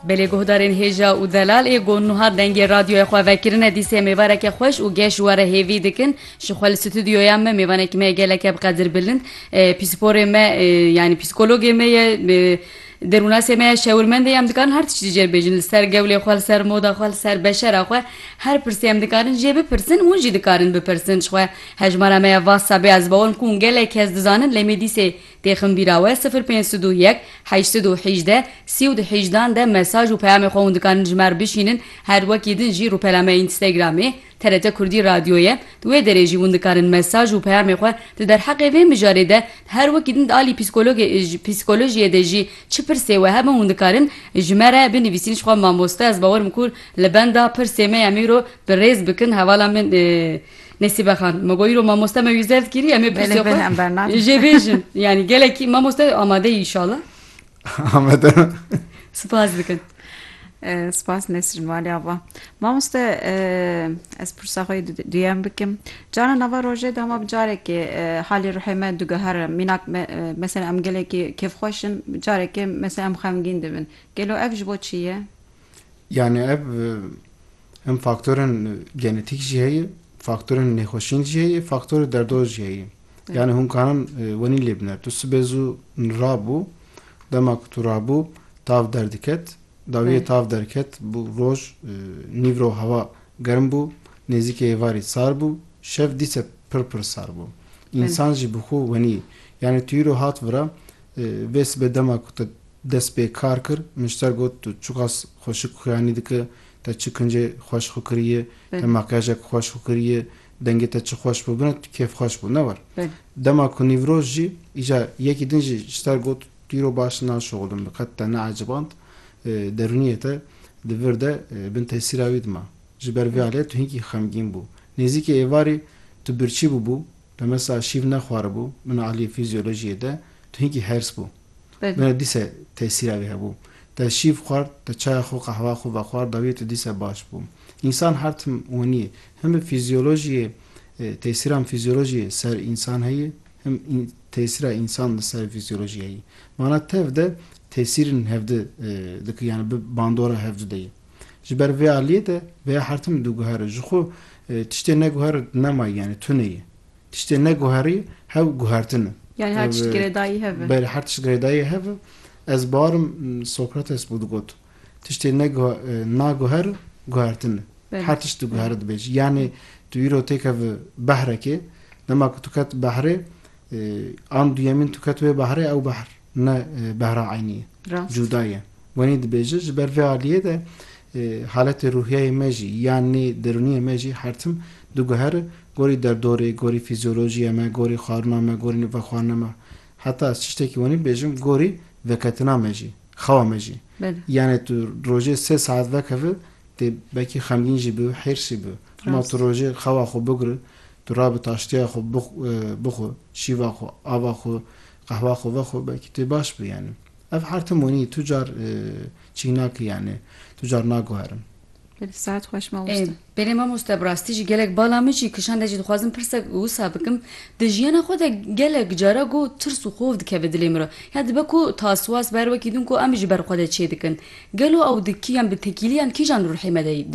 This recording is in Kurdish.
Belê guhdarên hêja û delal ê got nuha dengê radyoya xwe vekirine dîsê mêvareke xweş û geş were hêvî dikin ji xwe li stûdyoya me mêvanekî me ye geleke bi qedir bilind pîsporê me yanî pîskologê me ye derûnasê me ye şewirmendê ye em dikarin her tiştî jê bibêjin li ser gewlê xwe li ser moda xwe li ser beşera xwe her pirsê em dikarin jê bipirsin hûn jî dikarin bipirsin ji xwe hejmara me ya whatsappê ez bawer dikim ku gelek kes dizanin lê me dîsê Têxin bîra we sifir pênc sed û yek heşt sed û hîjdeh sî û du hîjdan de mesaj û peyamê xwe hûn dikarin ji me re bişînin her wekî din jî rûpela me Înstagramê TRT Kurdî Radyo ye di wê derê jî hûn dikarin mesaj û peyamê xwe di derheqê vê mijarê de her wekî din di alî pîskologê pîskolojiyê de jî çi pirsê we hebin hûn dikarin ji me re binivîsîn jixwe mamoste ez bawer im ku li benda pirsê me ya mîro bi rêz bikin hevala min Nesîbe Xan, me got îro mamoste me wî zevt kiriye em ê pirsê xwe jê bêjin. Yanî gelekî mamoste amade yî inşallah. Amade. Spas dikin. Spas Nesrin Valî Ava. Mamoste ez pirsa xwe duyem bikim. Cara nava rojê de hema bi carekê halê ruhê me digihere mînak mesela em gelekî kêfxweş in carekê mesela em xemgîn dibin. Gelo ev ji bo çi ye? Yani ev him faktorên genetîk jî heye, faktorên nêxweşîn jî heye, faktorê derdor jî heye. Yani hûn karin e, wenî lê bine. Tu sibê zû rabû, dema ku tu rabû tav derdiket, dawiyê tav derket bû roj e, nîvro hewa germ bû, nêzîkê êvarî sar bû, şev dîse pir pir sar bû. Însan jî bi xwe wenî. Yani tu îro hat vira e, vê sibê dema ku te Dest pê kar kir, Mujter got, Tu çiqas xwe şik xuyanî dike, te çi kincê xweş xwe kiriye, te makyajek xweş xwe kiriye, dengê te çi xweş bû bine, tu kêfxweş bû ne war. Dema ku nîvroj jî îcar yekî din jî ji ter got, Tu îro baş naşoxulin, min qet te neeciband, derûniyê te di vir de bin tesîra wî dima. Ji ber vê aliyê tu hinkî xemgîn bû. Nêzîkê êvarê tu birçî bûbû, pemesa şîv nexwaribû, min aliyê fîzyolojiyê de tu hinkî hers bû. Mera dîse tesîra wî hebû. Te şîv xward, te çaya xwe, qehweya xwe vexwar dawî tu dîse baş bû. Însan her tim wenî ye. Him bi fîzyolojîyê tesîran fîzyolojî ser însan heye him tesîra însan li ser fîzyolojî heye. Mana tev de tesîrên hevdu dike yanî bi bandora hevdu de ye. Ji ber vê aliyê de vêya her tim diguhere. Jixwe tiştê neguhere nema ye yanî tune ye. Tiştê neguherî hev guhertin e. Yanî her tişt girêdayî hev e. Belê her tişt girêdayî hev e. Ez barim Sokrates bû digot, tiştê naguher guhertin e. Her tişt diguhere dibêjî. Yanî tu îro têkeve behrekê, dema ku tu ket behrê an duyemîn tu ket wê behrê ew behr. ne behra eynî ye, cuda ye. Wenî dibêje ji ber vê aliyê de haletê ruhiyeyê me jî ya nê derûniyê me jî her tim diguhere gorî derdorê, gorî fîzyolojiyê me, gorî xwarina me, gorî vexwarina me. Heta çi ştekî wenî bibêjim gorî veketina me jî, xewa me jî. Yanê tu rojê sê saet vekeve tê belkî xemgîn jî bibe, hêrs jî bibe. Hema tu rojê xewa xwe bigire, tu rabe taştiya xwe bixwe, şîva xwe, ava xwe, Qehwa xwe ve xwe belkî tu baş bû yanî. Ev hertim wînî tu car çî nakî yanî tu car naguherim. Belê saet xweş mamoste. Ê belê mamoste bi rastî jî gelek bala min jî kişand ez jî dixwazim pirsek wisa bikim di jiyana xwe de gelek cara ku tirs û xof dikeve dilê min re ya dibe ku taswas ber wekî din ku em ji ber xwe de çêdikin gelo ew di kî yan bi tekîliyan kîjan ruhê me de